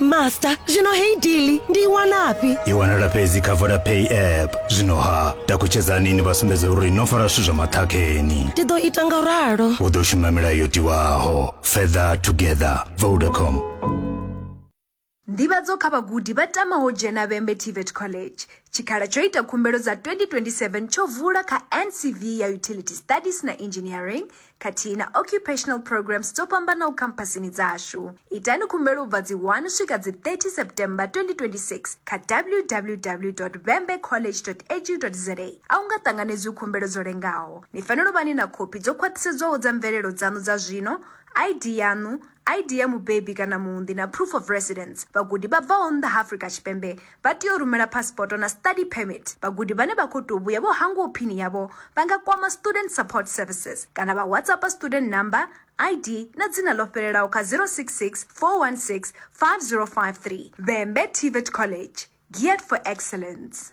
master zwino heyi dili ndi i wanafhi i wanala fhedzi kha vodapay app zwino ha takutshedzani ni vha sumbedza uri no fara zwithu zwa maṱhakheni ndi ḓo ita nga ralo u ḓo shuma milayo yo tiwaho further together vodacom nḓivhadzo kha vhagudi vha tamaho dzhena vhembe tvet college tshikhala tsho ita khumbelo dza 2027 tsho vula kha ncv ya utility studies na engineering khathihi na occupational programs dzo fhambanaho khamphasini dzashu itani khumbelo ubva dzi 1 swika dzi 30 september 2026 kha www vembe college edu za a u nga ṱanganedzwi khumbelo dzo lengaho ni fanela u vha ni na khophi dzo khwaṱhisedzwaho dza mvelelo dzaṋu dza zwino id yaṋu id ya mubebi kana muunḓi na proof of residence vhagudi vha bvaho nnḓa ha afrika tshipembe vha tea u rumela phasipoto na study permit. Vhagudi vhane vha khou tou vhuya vho hangwaho phini yavho vha nga kwama Student Support Services kana vha WhatsAppa student number, ID na dzina ḽo fhelelaho kha 066 416 5053. Vhembe TVET College, geared for excellence.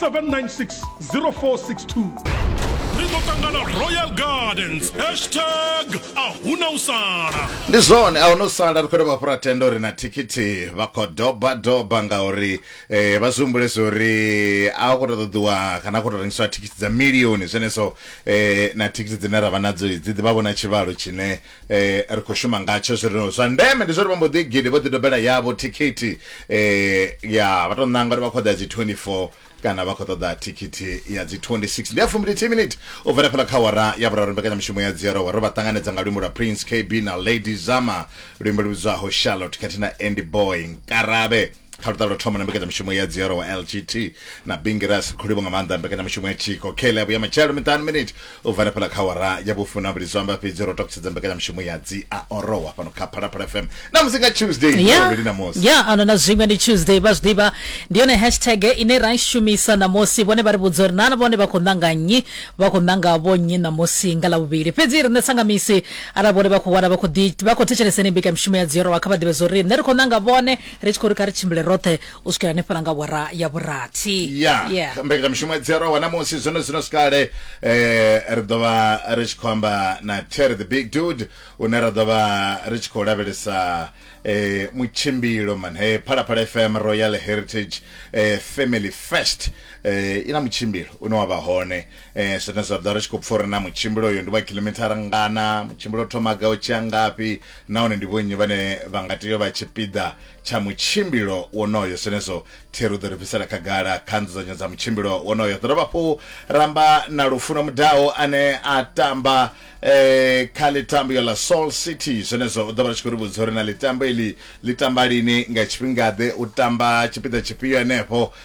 796 ri ḓo ṱangana royal gardens hashtag a huna u sala ndi zwone a huna u sala ri khou dovha fhura tenda uri na thikhithi vha khou doba doba ngauri eh, vha zwi humbulesa uri a khou tou ṱoḓiwa kana a khou tou rengiswa thikhithi dza milioni zwenezwo eh, na thikhithi dzine ra vha nadzo dzi ḓivha vhona tshivhalo tshine eh ri khou shuma ngatsho zwi rino zwa ndeme ndi zwo ri vha mbo ḓi gidi vho ḓi dobela yavho thikhithi eh ya vha tou ṋanga uri vha khou ḓa dzi 24 kana vha khou ṱoḓa thikhithi ya dzi 26 ndi ya fumbili t minute u bvela fhala kha wara ya vhuraru mbekanyamushumo ya dziero wari vha ṱanganedza nga luimbo lwa prince kb na lady zama luimbo lu vhidzwaho charlotte khathihi na andy boy nkarabe kha luṱa lwa thoma na mbekanyamushumo ya dzioro wa lgt na bingiras kholibo nga maanḓa mbekanyamushumo ya tshiko kele ya vhuya matshelo miṱanu miniti u bva nefhala kha wara ya vhufuna vhili zwo amba fhedzi ro takusedza mbekanyamushumo ya dzi a orowa fhano kha phalaphala fm na musi nga tuesday ya luvhili na musi ya ano na zwiṅwe ndi tuesday vha zwi ḓivha ndi yone hashtag ine ra i shumisa ṋamusi vhone vha ri vhudza uri nana vhone vha khou ṋanga nnyi vha khou ṋanga vho nnyi ṋamusi nga ḽavhuvhili fhedzi riṋe sangamisi arali vhone vha khou wana vha khou ḓi- vha khou thetshelesa ine mbekanyamushumo ya dziorowa kha vha ḓivhe zwo uri riṋe ri khou ṋanga vhone ri tshi khou ri kha ri tshimbile roṱhe u swikela hanefhala nga wara ya vhurathi ya yeah. mbekanyamishumo dzi arowa namusi zwino zwino sikale eh, ri ḓo vha ri tshi khou amba na terry the big dude une ra ḓo vha ri tshi khou lavhelesa eh, mutshimbilo man hey, phalaphala fm royal heritage eh, family fest eh, i na mutshimbilo une wa vha hone Ee, zwine zwa ḓa ri tshi khou pfa uri na mutshimbilo uyo ndi wa khiḽomithara ngana, mutshimbilo u thoma gai u tshi ya ngafhi nahone ndi vhonnyi vhane vha nga tea u vha tshipiḓa tsha mutshimbilo wonoyo. Zwenezwo Thero u ḓo ri bvisela khagala kha nzudzanyo dza mutshimbilo wonoyo. Ri ḓo dovha hafhu ra amba na Lufuno Mudau ane a tamba kha ḽitambo ḽa Soul City. Zwenezwo u ḓo vha ri tshi khou ri vhudza uri na ḽitambo iḽi ḽi tamba lini, nga tshifhinga-ḓe, u tamba tshipiḓa tshifhio henefho.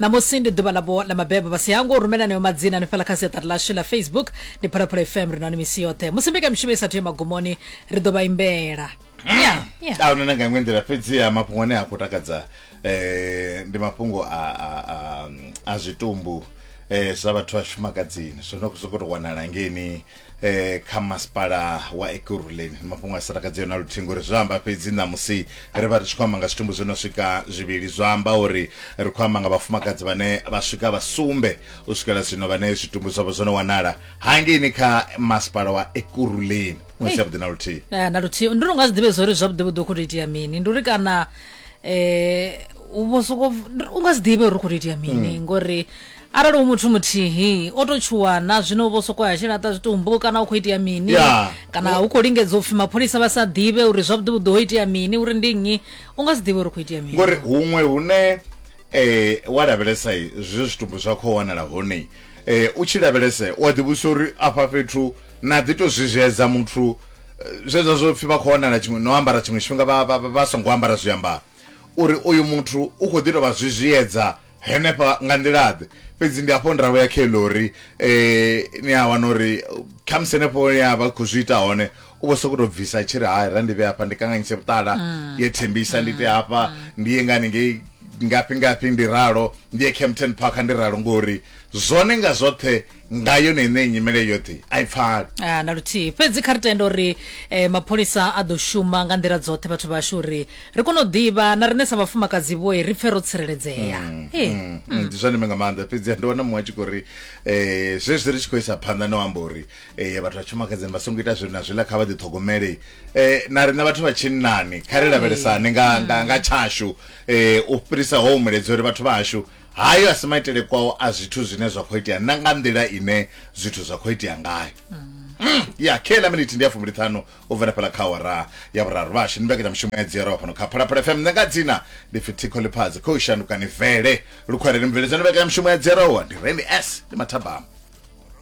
ṋamusi ndi ḓuvha ḽavho ḽa mabebo vha si hango u rumela nayo madzina hanefhala kha siaṱari ḽashu ḽa facebook ndi phalaphala fm ri nani misi yoṱhe musi mbekamishumo i sathu ya magumoni ri ḓo vha imbela Yeah, yeah. a huna na nga iṅwe nḓila fhedziha mafhungo ane a khou takadza um ndi mafhungo a a- a- a zwitumbu um zwa vhathu vha tshifumakadzini zwo no khou sokou tou wanala ngeni eh kha masipala wa ekurhuleni mafhungo a sirakadzi yona luthingo ri zwi amba fhedzi ṋamusi ri vha ri tshi khou amba nga zwitumbu zwi no swika zwivhili zwa amba uri ri khou amba nga vhafumakadzi vhane vha swika vha sumbe u swikela zwino vhane zwitumbu zwavho zwo no wanala hangeini kha masipala wa ekurhuleni ṅwedzi yavhuḓi na luthihi Eh, na luthihi ndi lunga zwiḓivhe zwori zwavhuḓi vhuḓi u khou tou itea mini ndi uri kana um u vho soko u nga zwiḓivhe uri u khou tou itea mini ngori Arali hu muthu muthihi o tou tshuwana zwino u vho sokou ya tshi laṱa zwitumbu kana hu khou itea mini Ya. kana hu khou lingedza u pfhi mapholisa vha sa ḓivhe uri zwavhuḓi vhuḓi ho itea mini uri ndi nnyi u nga si ḓivhe uri hu khou itea mini ngori huṅwe hune eh wa lavhelesa eh, zwi zwitumbu zwa khou wanala hone eh u tshi lavhelesa u a ḓivhusa uri afha fhethu na ḓi to zwizhedza muthu eh, zwezwa zwo pfhi vha khou wanala tshiṅwe no ambara tshiṅwe tshifhinga vha- vha vha- vha songo ambara zwiambaro uri uyu muthu u khou ḓi tou vha zwizhiyedza henefha nga nḓilaḓe fhedzi ndi hafho ndavho ya khe lori eh ni a wana uri khamusi henefho ya vha khou zwi ita hone u vho sokou tou bvisa tshi ri hai ra ndi vhe hafha ndi kanganyise vhuṱala mm. ye thembisa ndi ite hafha mm. ndi ye ngani ngei ngafhi ngafhi ndi ralo ndi ye Kempton Park ndi ralo ngori zwone nga zwoṱhe nga yone ine nyimele yoṱhe a i pfali ah, na luthihi fhedzi kha ri tenda uri eh, mapholisa a ḓo shuma nga nḓila dzoṱhe vhathu vhashu uri ri kone u ḓivha na riṋe sa vhafumakadzi vhoe ri pfe ro tsireledzea mm, eh, mm, mm. mm. ndi zwa ndeme nga maanḓa fhedzi ndi wana muṅwe a tshi khou ri um zwezwi ri tshi khou isa phanḓa no amba uri um vhathu vha tshumakadzini vha songo ita zwino na zwiḽa kha vha ḓiṱhogomele um na riṋe vhathu vha tshinnani kha ri lavhelesane nga tshashu um u fhirisa ho umuledza uri vhathu vhashu Hayo a si maitele kwao a zwithu zwine zwa khou itea na nga nḓila ine zwithu zwa khou itea ngayo Mm, ya khe ḽa minithi ndi ya fumbiliṱhanu u bvela fhala kha awara ya vhuraru vhashu ndi mbekanyamushumo ya dziyaraho fhano kha phalaphala fm nṋe nga dzina ndi pfi thikho ḽiphadzi khou shanduka ni vele lukhwareni mubveledzani mbekanyamushumo ya dziyaraho ndi randy s ndi mathabama